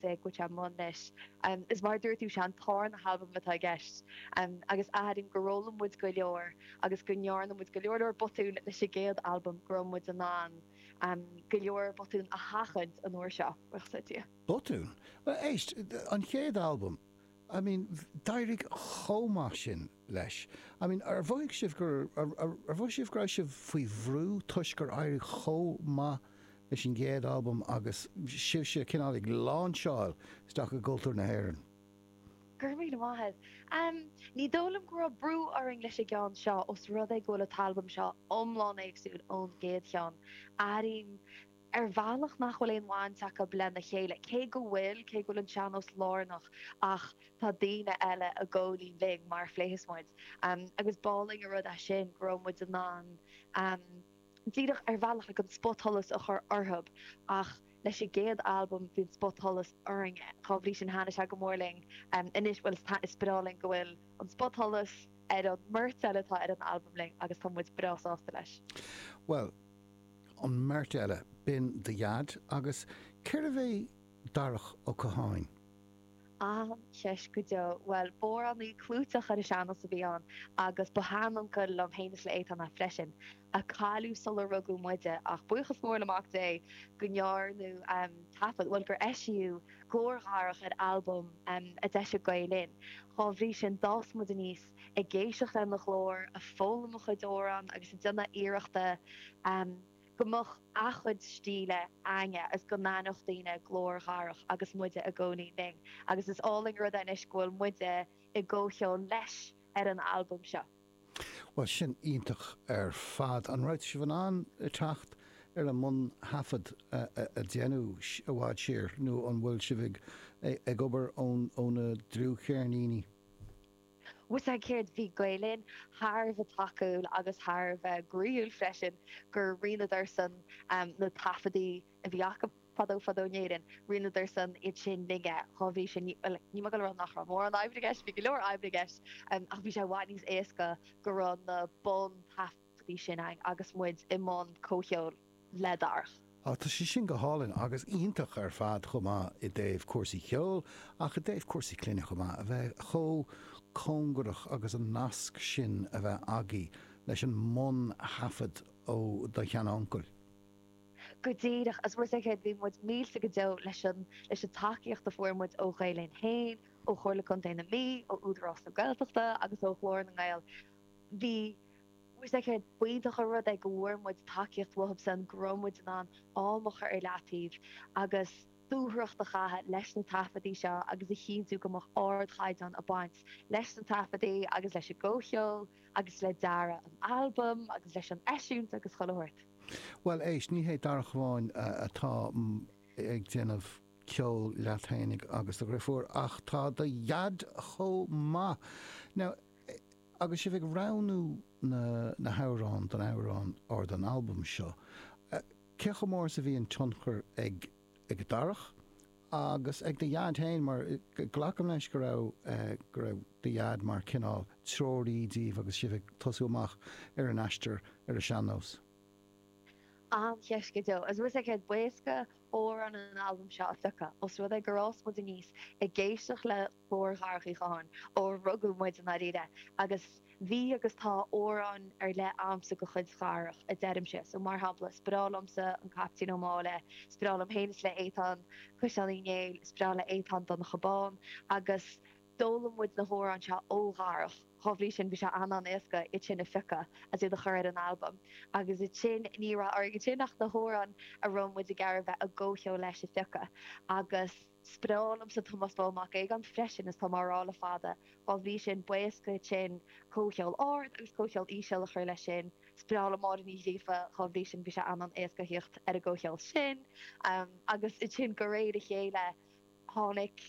bheith goite i mbun leis. Is mar a dúirt tú, sé an dara halbam atá i gceist agus airím gur fhoghlaim muid go leor agus go ndearna muid go leor leor botún leis an gcéad albam go raibh muid in ann go leor botún a sheachaint an uair seo. Botún? Bhuel éist, an chéad albam, I mean, d'éirigh chomh maith sin. leis. I mean, ar mhothaigh sibh gur, ar mhothaigh sibh go raibh sibh faoi bhrú toisc gur éirigh chomh maith leis an gcéad albam agus sibhse cineál ag láinseáil isteach i gcultúr na hÉireann? Go raibh míle maith agat. Em, ní dóigh liom go raibh brú orainn leis an gceann seo os rud é go bhfuil an t-albam seo iomlán éagsúil ón gcéad cheann. Airím. ar bhealach nach bhfuil aon bhaint acu lena chéile, cé go bhfuil, cé go bhfuil an sean-nós lárnach ach tá daoine eile ag comhcheol linn mar a phléas muid agus b'álainn an rud é sin go raibh muid in ann díreach ar bhealach an spotsholas a chur orthu ach leis an gcéad albam bhí an spotsholas orainne dhá bhrí sin thaitnigh sé go mór linn anois bhuel is breá linn go bhfuil an spotsholas ar an mbeirt eile atá ar an albam linn agus tá muid breá sásta leis. Bhuel, an mbeirt eile, Binn do dhaid agus cérbh é Darach Ó Catháin? An-cheist go deo. Bhuel, b'amhránaí clúiteach ar an sean-nós a bhí ann agus ba sheanuncail liom féin is le Étáin é freisin, a cailleadh sular rugadh muide ach buíochas mór le Mac Dé go ndearnadh taifead, bhuel gur eisíodh glór Dharach ar albam a d'eisigh Gael Linn. Dá bhrí sin, d'fhás muid aníos. ag éisteacht lena ghlór, ag foghlaim a chuid amhrán agus ag déanamh iarrachta go mbeadh a chuid stíle, againne agus go n-aithneodh daoine glór Dharach agus muide i gcónaí linn agus is álainn rud é anois go bhfuil muide i gcomhcheol leis ar an albam seo. Bhuel, tá sin iontach ar fad. An raibh sibh in ann teacht ar an mbun-thaifead a déanadh i bhfad siar nó an bhfuil sibh ag obair ón dlúthcheirnín? Bhuel, is éard? Bhí Gael Linn thar a bheith tacúil agus thar a bheith groíúil freisin gur roinneadarsan na taifeadtaí a bhí acu fadó fadó in Éirinn, roinneadarsan iad sin linne. Dhá bhrí sin, bhuel, níl mé ag rá nach raibh mórán oibre i gceist, bhí go leor oibre i gceist, ach bhí sé i bhfad níos éasca go raibh na bun-taifeadtaí, taí sin ann agus muid i mbun comhcheoil le Darach. Á, tá sé sin go hálainn agus iontach ar fad chomh maith i dtaobh cúrsaí ceoil ach i dtaobh cúrsaí clainne chomh maith, a bheith chomh cóngarach agus an nasc sin a bheith agaibh leis an mbun-thaifead ó do shean-uncail? Go díreach, agus mar a dúirt mé, bhí muid millte go deo leis an tacaíocht a fuair muid ó Ghael Linn féin, ó Chomhairle Contae na Mí, ó Údarás na Gaeltachta agus ó Ghlór na nGael. Bhfuil a fhios a'd céard, b'iontach an rud é go bhfuair muid tacaíocht uathub san go raibh muid in ann am a chur ar leataobh agus dúthracht a chaitheamh leis na taifeadtaí seo agus a chinntiú go mbeadh ardchaighdeán ag baint leis na taifeadtaí agus leis an gcomhcheol agus le dearadh an albaim agus leis an eisiúint agus chuile shórt. Bhuel, éist, ní hé Darach amháin atá ag déanamh ceol leat fhéinig agus do dhriofúr ach tá do Dhaid chomh maith. Now, Agus sibh ag roghnú na hamhráin don amhrán or don albam seo, cé chomh mór is a bhí an tionchar ag Darach agus ag do dhaid féin mar glacaim leis go raibh go raibh do dhaid mar cineál treoraí díbh agus sibh ag tosú amach ar an aistear ar an sean-nós? An-cheist go deo. Agus bhfuil a fhios a'd céard, b'éasca amhráin an albaim seo a phiocadh os rud é gur fhás muid aníos ag éisteacht le Glór Dharach Uí Chatháin ó rugadh muid i ndáiríre, agus bhí agus tá amhráin ar leith agamsa de chuid Dharach, a deirimse. So, mar shampla, is breá liomsa an Caiptín Ó Máille, is breá liom féin is le Étáin Caisleán Uí Néill, is breá le Étáin Donncha Bán, agus d'fhoghlaim muid na hamhráin seo ó Dharach. Dhá bhrí sin, bhí sé an-an-éasca iad sin a phiocadh agus iad a chur ar an albam. Agus ansin, ní raibh orainn ansin ach na hamhráin a raibh muid ag iarraidh bheith i gcomhcheol leis a phiocadh agus. Is breá liomsa Tomás Bán Mac Aogáin freisin is tá mé á rá le fada, dhá bhrí sin b'éasca ansin comhcheol ard agus comhcheol íseal a chur leis sin. Is breá liom Máire Ní Ghríofa dhá bhrí sin bhí sé an-an-éasca thíocht ar an gcomhcheol sin agus ansin de réir a chéile tháinig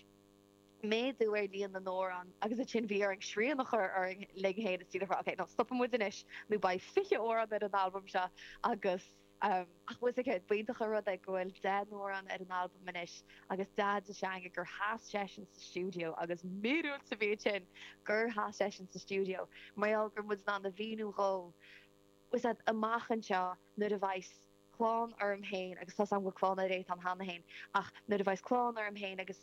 méadú ar líon na n-amhrán agus ansin bhí orainn srian a chur orainn linn fhéin is díreach a rá ok, no stopfaidh muid anois nó beidh fiche amhrán ar an albam seo agus. Ach bhfuil a fhios a'd céard, b'iontach an rud é go bhfuil deich n-amhrán ar an albam anois agus Daid sa seanga gur sheas seisean sa stiúideo agus míorúilt sa mhéid sin gur sheas seisean sa stiúideo mar gheall go raibh muid in ann a mhíniú dhó, bhfuil a fhios a'd, amach anseo nuair a bheas clann orm fhéin agus tá's a'm go bhfuil clann ar Étáin cheana fhéin ach nuair a bheas clann orm fhéin agus.